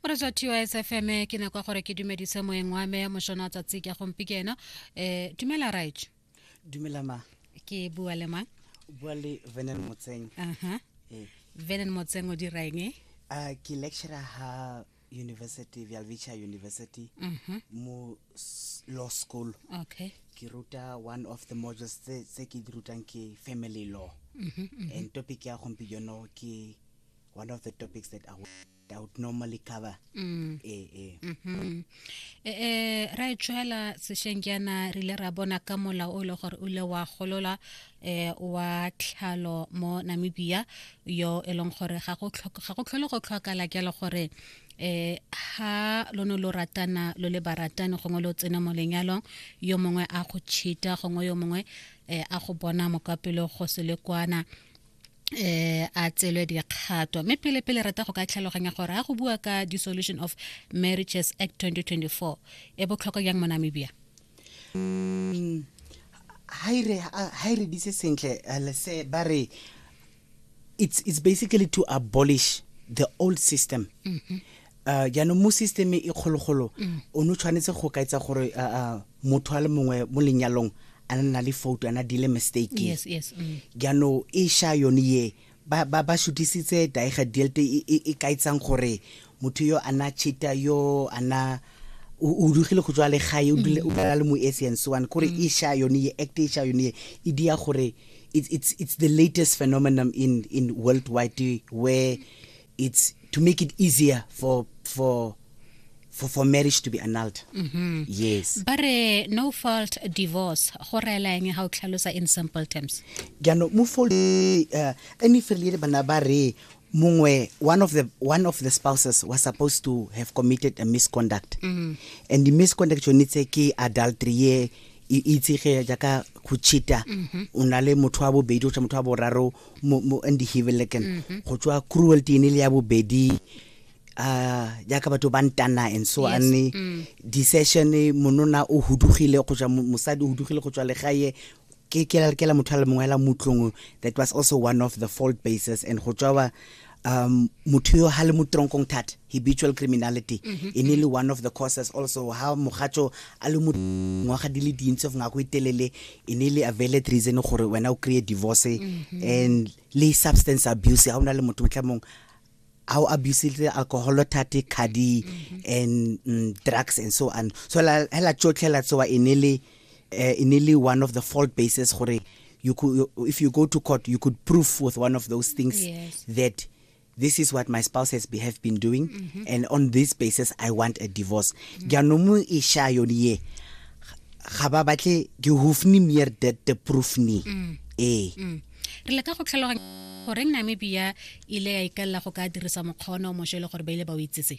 o re tswa tos fm ke nako gore ke dumedise moeng wa me mošona tsatsi ke gompi ke ena um dumela right dumela ma ke bua le mang bua le venen motseng aha eh. venen motseng o diraeng e uh, ke lecturer ha university vialvicha university uh mhm. -huh. mo law school okay ke ruta one of the modules tse ke di rutang ke family law uh mhm, -huh, mhm. uh -huh. and topic ya gompi jono ke one of the topics that I would, I would normally cover. Mm. Eh, eh. Mm -hmm. eh, eh, ra e tšhwela sešeng jaana re ile ra bona ka mola o e le gore o ile wa golola eh, wa tlhalo mo namibia yo e leng gore ga go tlhole go tlhokala jalo gore eh ha lo no lo ratana lo le baratani gongwe lo tsena mo lenyalong yo mongwe a go cheata gongwe yo mongwe eh, a go bona mokapelo go se le kwana eh a tselwe dikgato mme pele pele rata go ka tlhaloganya gore a go bua ka dissolution of marriages act 2024 e botlhokwa yang mo namibia mm, ha e re dise sentle eh, lese ba re it's, it's basically to abolish the old system mm -hmm. uh, jaanong mo systeme e kgologolo mm. o ne o tshwanetse go kaetsa gore uh, uh, motho a le mongwe mo lenyalong a ne na le foto ana dile mistake yes, yes, mm. jaanong e sha yone ye ba ba ba shutisitse daega delte e, e, e kaetsang gore motho yo ana chita yo ana o dugile go tswa le gae o dule o dala le mo essence one kore mm. e sha yone ye act e sha yone ye e dia gore it's it's it's the latest phenomenon in in worldwide where it's to make it easier for for for, for marriage to be annulled mm -hmm. yes but uh, no fault divorce go reela eng ga o tlhalosa in simple terms jaanong mo fault uh, any failure bana ba re mongwe one of the one of the spouses was supposed to have committed a misconduct mm -hmm. and the misconduct yone tse ke adultery ye e itsege jaaka go cheata mm-hmm. o na le motho wa bobedi o tsa motho wa boraro mo mo andihibeleken mhm. go tswa cruelty ene le ya bobedi uh jaaka batho ba ntana and so yes. ane mm. decision monona o hudugile go tswa mosadi o hudugile go tswa legae ke ke la motho a le mongwe la mutlong that was also one of the fault bases and go tswa um motho yo ha le mo tronkong thata habitual criminality mm -hmm. e ne le one of the causes also ha mogatso a le mo ngwaga di le dintsi of ngako itelele e ne le availed reason gore wena o kry divorce mm -hmm. and le substance abuse ha o na le motho motlhamong a o abusile alcohol thate khadi mm -hmm. and mm, drugs and so on so la hela tsotlhela tsoa e ne le uh, e ne le one of the fault bases gore you could you, if you go to court you could prove with one of those things yes. that this is what my spouse has be, have been doing mm -hmm. and on this basis i want a divorce mm-hmm. jaanong mm -hmm. e sha yone ye ga ba batle ke hofni mere that the proof ni mm. ee mm. re le ka go tlhaloganya goreng namibia ile ya ikalela go ka dirisa mokgwa one o mošwa e le gore ba ile ba o itsese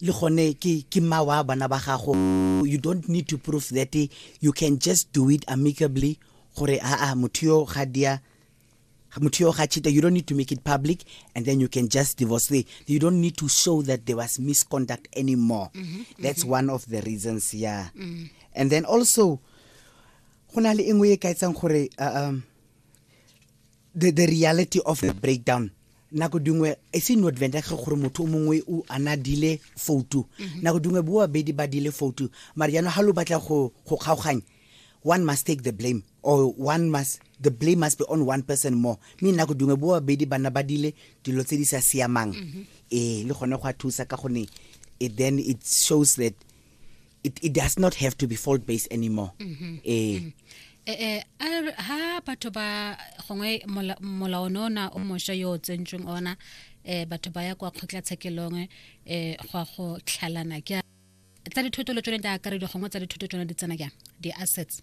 le gone ke ke mma wa bana ba gago you don't need to prove that you can just do it amicably gore aa motho yo ga dia motho yo ga chita you don't need to make it public and then you can just divorce the you don't need to show that there was misconduct anymore mm -hmm, that's mm -hmm. one of the reasons yeah mm -hmm. and then also go na le e nngwe e ka etsang gore uh, um, the, the reality of the breakdown nako dingwe e se no advantage gore motho o mongwe o ana dile foutu mhm. nako dingwe bo babedi ba dile foutu mara jaanong ga lo batla go kgaoganya one must take the blame or one must the blame must be on one person more mme nako dingwe bo babedi bana ba dile dilo tse di sa siamang mhm. ee le gone go a thusa ka gone then it shows that it, it does not have to be fault based anymore mm-hmm. eh mm-hmm. Eh, eh, a ha batho ba gongwe molao ne ona o mosha yo o tsentsweng ona um batho ba ya kwa kgotlatshekelong um go a go tlhalana ke tsa dithoto le tsone di akaredi gongwe tsa dithoto tsone di tsena jang di-assets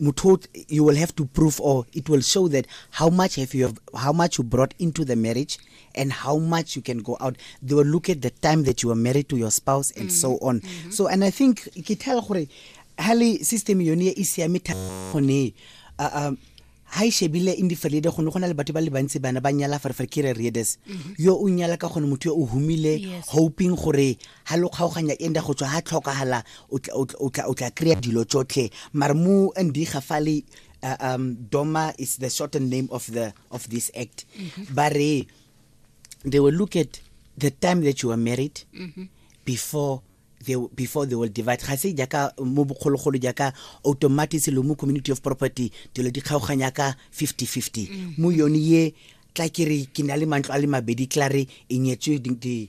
Mutut, you will have to prove or it will show that how much have you have, how much you brought into the marriage and how much you can go out. They will look at the time that you were married to your spouse and mm. so on. Mm -hmm. So and I think ke tell gore hali system yone e siame thone uh, um ha e shebile in diferede gone go na le batho ba le bantsi bana ba nyala farefare ke re readers mm-hmm. yo o nyala ka gone motho yo o humile hoping gore ha lo kgaoganya enda go tswa ha tlhokagala o tla- o tla- o tla- o tla kry-a dilo tsotlhe mare mo ndiga fale uh, um, doma is the shortened name of the of this act ba re they will look at the time that you were married before they, before they will divide ga se jaaka mo bogologolo jaaka automatic lo mo community of property dilo di kgaoganya ka 50-50 mo yone ye tla ke re ke na le mantlo a le mabedi tla re e nyetswe di- di-